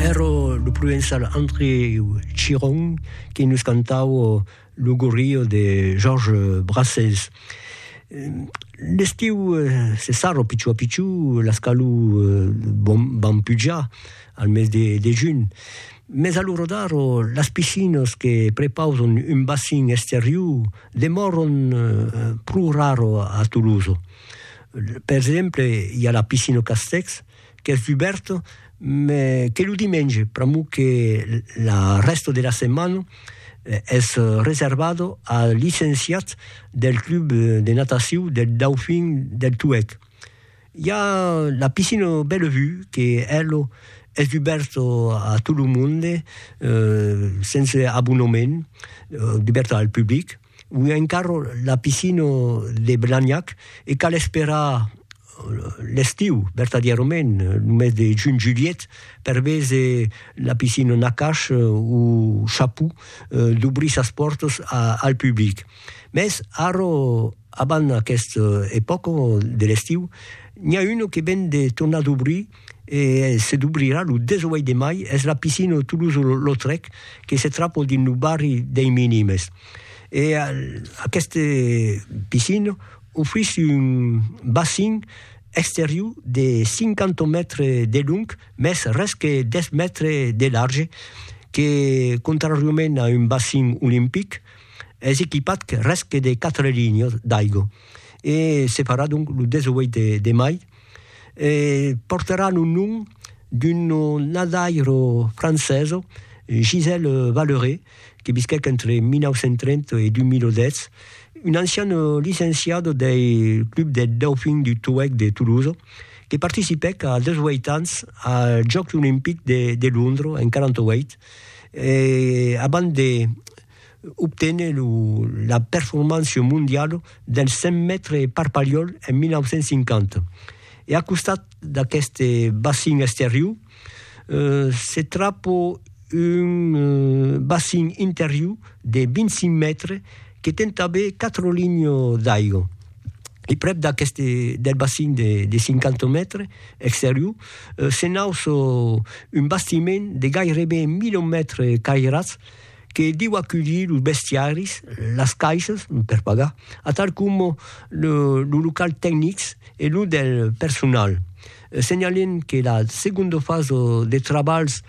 Ero lo provençal André Chiron qui nous cantau lo gorrio de Georges Brassens. L'estiu se sarra a piciu a piciu, las calors van pujar al mes de, de junh, mes a lo rodar las piscinas que prepausan un bassin exterior demòran pro rara a Tolosa. Per exemple, i a la piscina Castex, qu'es dubèrt, me que lo dimenge, pr'amor que la rèsta de la setmana es reservada als licenciats del club de natacion del Dauphin del Tuèlh. I a la piscina Bellevue que ela es dubèrta a tot lo monde, sense abonament, dubèrta al public. Ui encara la piscina de Blagnac e cal esperar l'estiu, vertadièrament, lo mes de junh-julhet, per véser la piscina Nakash o Chaput dobrir sas pòrtas al public. Mès ara, abans aquesta epòca de l'estiu, n'i a una que ven de tornar dobrir e se dubrirà lo 18 de mai es la piscina Toulouse-Lautrec que se trapol dins lo barri dei Minimes e aquesta piscina ofrís un bassin exterior de 50 mètres de long mès res que 10 mètres de large que contrariament a un bassin olimpic es equipat res que de 4 linhas d'aiga e se farà donc lo 18 de mai. e portaràn un nom d'un nadaire francés, Gisèle Valleré, que visquèc entre 1930 e 2010, un ancian licenciat dei Club des Dauphins du Toueck de Toulouse, que participèc a 18 ans als Jòcs Olimpics de Londres en 48, e abans de obténer la performance mondiala dels 100 mètres per Pariol en 1950. E a costat d'aqueste bacin exterior se trapa un bacin interior de 25 mètres que ten tanben 4 linhas d'aiga. E prèp d'aqueste del bacin de 50 mètres exterior se nauça un bastiment de gaireben 1000 mètres cairats, que diu aculhir los bestiaris, las caissas per pagar, atal coma los locals tecnics e los del personal. Senhalem que la segonda fasa de trabalhs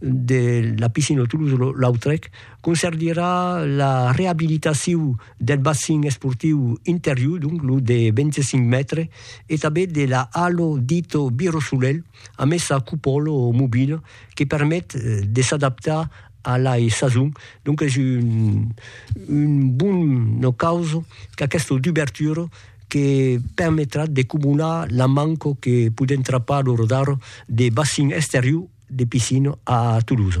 de la piscina Toulouse-Lautrec concerdirà la reabilitacion del bassin esportiu interior, donc lo de 25 mètres, e tanben de la halo dita Biro Solelh, amessa cupòla mobila que permet de s'adaptar a la sazon, donc es un bon ocaus qu'aquesta dubertura que permetrà de cumular la manca que podèm trapar lo rodar de bacin exterior de piscina a Tolosa.